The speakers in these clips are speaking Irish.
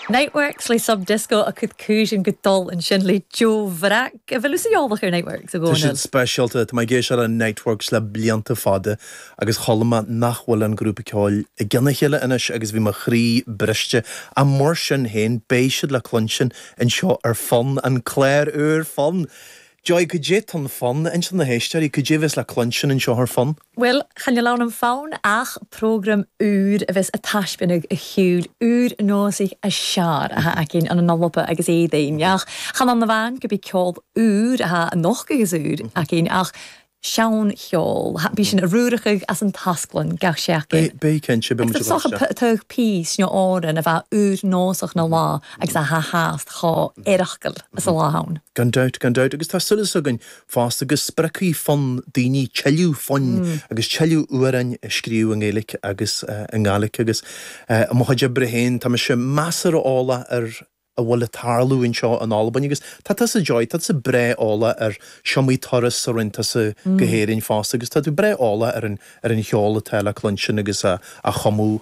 Niteworks le Sub Disco a' cur cùisean gu dol an sin le deagh bhrag, a bheil thusa eòlach air Niteworks a Dhomhnaill? Tá siad speisialta. Tá mé ag éisteacht le Niteworks le blianta fada agus chuala mé nach bhfuil an grúpa ceoil i gcionn a chéile anois agus bhí mo chroí briste. Ach mar sin féin, beidh siad le cluinstin anseo ar Fonn, an clár úr Fonn! Joy, cad é atá in Fonn? Inis do na héisteoirí, cad é a bheas le cluinstin anseo ar Fun? Bhuel, cha níl ann an fonn ach prógraim úr a bheas ag taispeánadh a shiúil, úr nósaigh a sear atá aicinn an Nolapa agus Éadaoin. Ach chan fhad na bhfan gurb é ceol úr atá an nocht agus úr aicinn ach seancheol. Bhí sin a ruarachadh as an tasclann, gach sé aicinn. Beidh, cinnte, beidh muid ag dul isteach. Tugadh Peace, you know, Árann a bheadh úr nósach na lá agus a ha has chomh oireachtail is a lá ann. Gan dabht, gan dabht. Agus tá solas againn fosta go spreagfaidh fonn daoine tuilleadh foinn agus tuilleadh amhráin a scríobh i nGaeilge agus i nGàidhlig agus i mo chuid oibre féin tá mise measartha eolach ar a bhfuil ag tarlú anseo in Albain agus tá tusa Joy, tá tusa breá eolach ar is iomaí turas a rinne tusa go hÉirinn fosta agus tá tú breá eolach ar an cheol atá le cluinstin agus á chumadh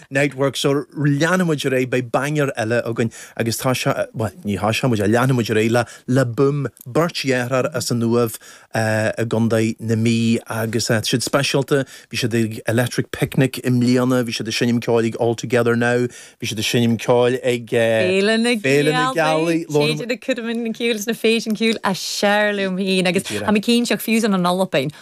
Niteworks so leanfaidh muid ar aghaidh, beidh banger eile againn agus tá sé, bhuel ní, tosóidh muid a, leanfaidh muid ar aghaidh le, le Boom, beirt dheartháir as an Uaimh i gContae na Mí agus tá siad speisialta, bhí siad ag Electric Picnic i mbliana, bhí siad ag seinm ceoil ag All Together Now, bhí siad ag seinm ceoil ag Féile na Féile na Gealaí, Gealaí, labhair Téid muid. ina cuid min ciúil sna fèisean ciùil as fheàrr leam fhèin agus tha mi cinnteach fiù 's ann an Alba